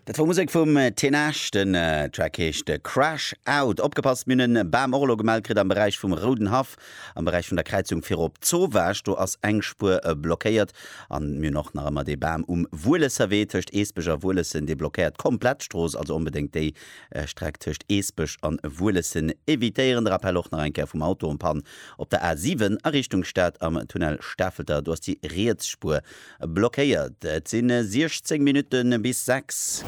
Dat wor Musek vum Tenasch, den Track heescht Crash Out. Opgepasst, mir hunn e Bam och elo gemellt kritt am Beräich vum Rouden Haff, am Beräich vun der Kräizung fir op Zowaasch, do ass eng Spuer blockéiert. An mir hunn och nach ëmmer dee Bam um Wuelesserwee tëscht Eesbech a Wuelessen, dee blockéiert d'komplett Strooss, also onbedéngt déi Streck tëscht Eesbech an Wuelessen evitéieren. De Rappell och nach eng Kéier vum Auto en panne op der A 7 a Richtung Stad am Tunnel Stafelter, do ass déi riets Spuer Blockéiert. Et si 16 Minutte bis sechs.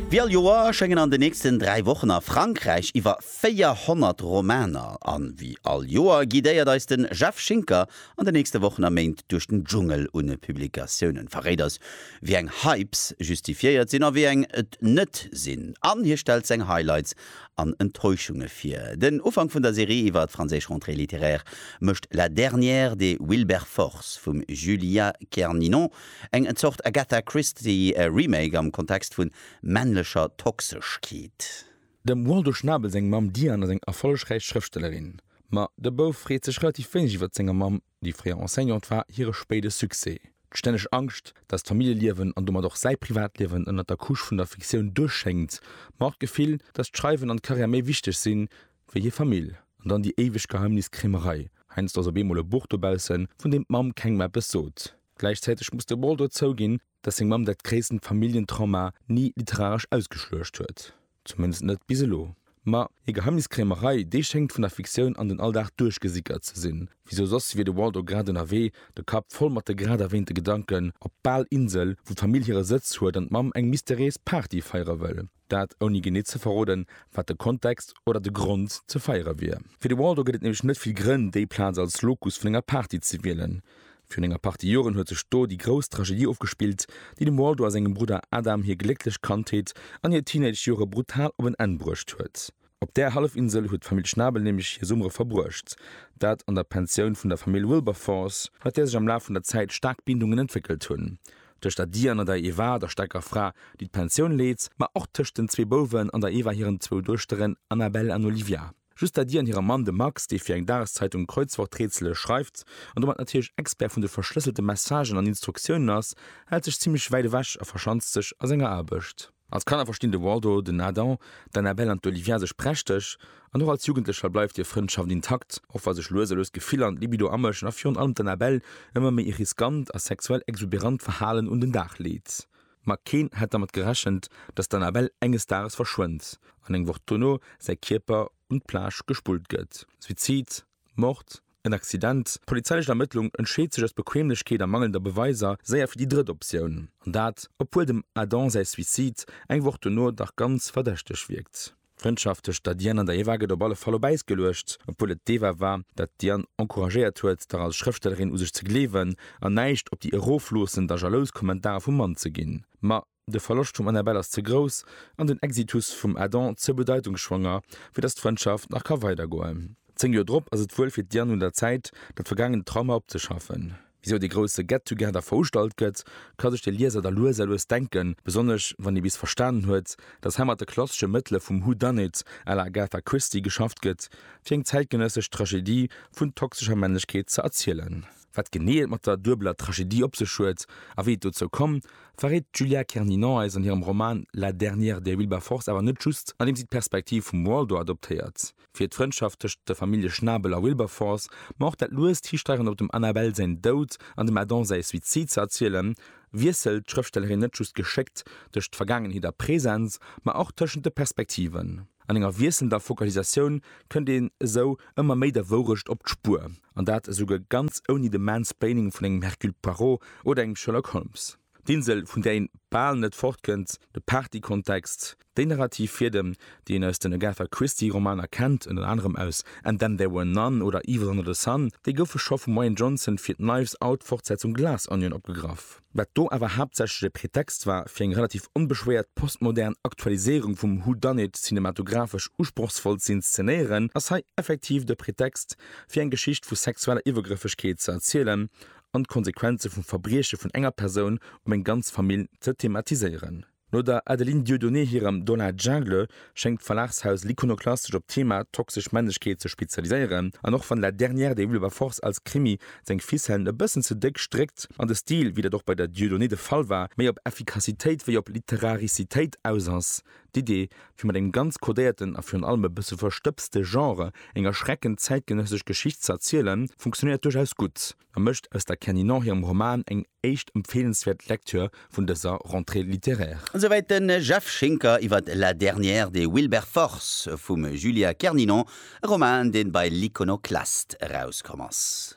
Wéi all Joer schéngen an den nächsten dräi Wochen a Frankräich iwwer 400 Romaner. A wéi all Joer guidéiert eis de Jeff Schinker an den nächste Wochen a Méint duerch den Dschungel un Publikatiounen, verréit eis, wéi eng Hypes justifiéiert sinn a wéi eng et net sinn, an hie stellt seng Highlights an Enttäuschunge vir. Den Ufank vun der Serie iwwer d'franséisch Rentrée littéraire mécht La dernière de Wilberforce vum Julia Kerninon, eng Zort Agatha Christie-Remake am Kontext vu männlecher Toxeschkeet. Dem Waldo Schnabel seng Mamm Diane ass eng erfollegräich Schrëftstellerin. Ma de Bouf freet sech relativ wéineg iwwert senger Mamm. Déi fréier Enseignante war hire spéide Succès, d'stänneg Angscht, datt d'Familljeliewen an domat och säi Privatliewen ënnert der Couche vun der Fiktioun duerchschéngt, ma och d'Gefill, datt d'Schreiwen an d'Karriär méi wichteg sinn, wéi hir Famill. An dann déi éiweg Geheimniskrämerei, heiansdo ass op eemol e Buch dobaussen, vun deem d'Mamm kengem eppes sot. Gläichzäiteg muss de Ball do zouginn, dass seng Mamm dat gréissten Familljentrauma ni literaresch ausgeschluecht huet, zumindest net bis elo. Ma hir Geheimniskrämerei, déi schéngt vun der Fiktioun an den Alldag duerchgesickert ze sinn, wisou soss wier de Waldo grad ënnerwee, de Kapp voll mat de grad erwähnte Gedanken, op d'Balinsel, wou d'Famill hire Sëtz huet an d'Mamm eng mysteriéis Party feiere wëll. Dat ouni genee ze verroden, wat de Kontext oder de Grond ze feiere wier. Fir de Waldo gëtt et nämlech net vill Grënn, déi Plaz als Locus vun enger Party ze wielen. Virun enger Partie Joren huet sech do déi grouss Tragedie ofgespillt, déi dem Waldo a sengem Brudder Adam hir glécklech Kandheet an hir Teenage-Jore brutal op en Enn bruecht huet. Op där Hallefinsel huet d'Famill Schnabel nämlech hir Summere verbruecht, dat an der Pensioun vun der Famill Wilberforce, mat där sech am Laf vun der Zäit staark Bindungen entwéckelt hunn, tëscht der Diane an der Eva, der staarker Fra, déi d'Pensioun leet, ma och tëscht den zwee Bouwen an der Eva hiren zwou Duechteren Annabelle an Olivia, just der Diane hirem Mann, dem Max, dee fir eng Dageszeitung Kreuzworträtsele schreift an domat natierlech Expert vun de verschlësselte Messagen an Instruktiounen ass, hält sech zimmlech wäit ewech a verschanzt sech a senger Aarbecht. Als Kanner verstinn de Waldo, den Adam, d'Annabelle an d'Olivia sech prächteg, an och als Jugendlecher bleift hir Frëndschaft intakt, och wa sech lues a lues d'Gefiller an d'Libido amëschen a virun allem d'Annabelle ëmmer méi e riskant a sexuell exuberant Verhalen un den Dag leet. Ma keen hätt dermat gerechent, dass d'Annabelle enges Dages verschwënnt an eng Woch dono säi Kierper un d'Plage gespullt gëtt. Suizid? Mord, en Accident? D'polizeilech Ermëttlung entscheet sech aus Bequemlechkeet a mangelnder Beweiser séier fir déi drëtt Optioun. An dat, obwuel dem Adam säi Suicide eng Woch dono dach ganz verdächteg wierkt. D'Frëndschaft tëscht der Diane an der Eva gëtt op alle Fall op Äis geluecht, obwuel et d'Eva war, dat d'Diane encouragéiert huet, dach als Schrëftstellerin u sech ze gleewen an näischt op déi erofloossend a jalous Kommentarer vum Mann ze ginn. Ma De Verloscht vum Annabelle ass ze grouss an den Exitus vum Adam ze bedeitungsschwanger, fir datt d'Frëndschaft nach ka weidergoen. Zéng Joer drop ass et wuel fir d'Diane un der Zäit, dat vergaangent Trauma opzeschaffen. Wisou dee grousse Get-Together veustallt gëtt, ka sech de Lieser da lues a lues denken, besonnesch wann ee bis verstanen huet, datt hei mat de klassesche Mëttele vum Who Done It à la Agatha Christie geschafft gëtt, fir eng zäitgenëssesch Tragedie vun toxescher Männlechkeet ze erzielen. Wat genee et mat der duebeler Tragedie op sech huet a wéi et dozou komm, verréit d'Julia Kerninon eis an hirem Roman La dernière des Wilberforce awer net just, andeem si d'Perspektiv vum Waldo adoptéiert fir d'Frëndschaft tëscht der Famillje Schnabel a Wilberforce, ma och dat luest Histeieren op dem Annabelle säin Doud an dem Adam säi Suizid ze erzielen, wiesselt d'Schrëftstellerin net just geschéckt tëscht Vergaangenheet a Präsens, ma och tëschent de Perspektiven. An enger wiesselnder Focalisatioun kënnt een esou ëmmer méi der Wourecht op d'Spuer, an dat esouguer ganz ouni de Mansplaining vun engem Hercule Poirot oder engem Sherlock Holmes. D'Insel, vun där een bal net fortkënnt, de Partykontext, déi narrativ Fiedem, déi een aus den Agatha Christie Romaner kennt, ënner anerem aus And Then There Were None oder Evil Under The Sun, déi goufe scho vum Rian Johnson fir d'Knives Out Fortsetzung Glass Onion opgegraff. wat do awer haaptsächlech e Pretext war fir eng relativ onbeschwéiert postmodern Aktualiséierung vum Who Done It cinematographesch usprochsvoll z'inszenéieren, ass hei effektiv de Pretext fir eng Geschicht vu sexueller Iwwergrëffegkeet ze erzielen an d'Konsequenze vum Verbrieche vun enger Persoun op eng ganz Famill ze thematiséieren. No der Adeline Dieudonné hirem Dans la Jungle schéngt d'Verlagshaus L'Iconoclaste sech op d'Thema toxesch Männlechkeet ze spezialiséieren. An och wann La dernière des Wilberforce als Krimi seng Ficellen e bëssen ze déck stréckt an de Stil, wéi dat och bei der Dieudonné de Fall war, méi op Effikassitéit wéi op Literaricitéit aus ass, d'Idee, fir mat engem ganz kodéierten a virun allem e bësse verstëbste Genre eng erschreckend zäitgenëssesch Geschicht ze erzielen, funktionéiert duerchaus gutt. a mécht aus der Kenny Nor hirem Roman eng éischt empfeelenswäert Lektür vun dëser Rentrée littéraire. Esouwäit de Jeff Schinker iwwer La dernière des Wilberforce vum Julia Kerninon, e Roman, dee bei L'Iconoclaste erauskomm ass.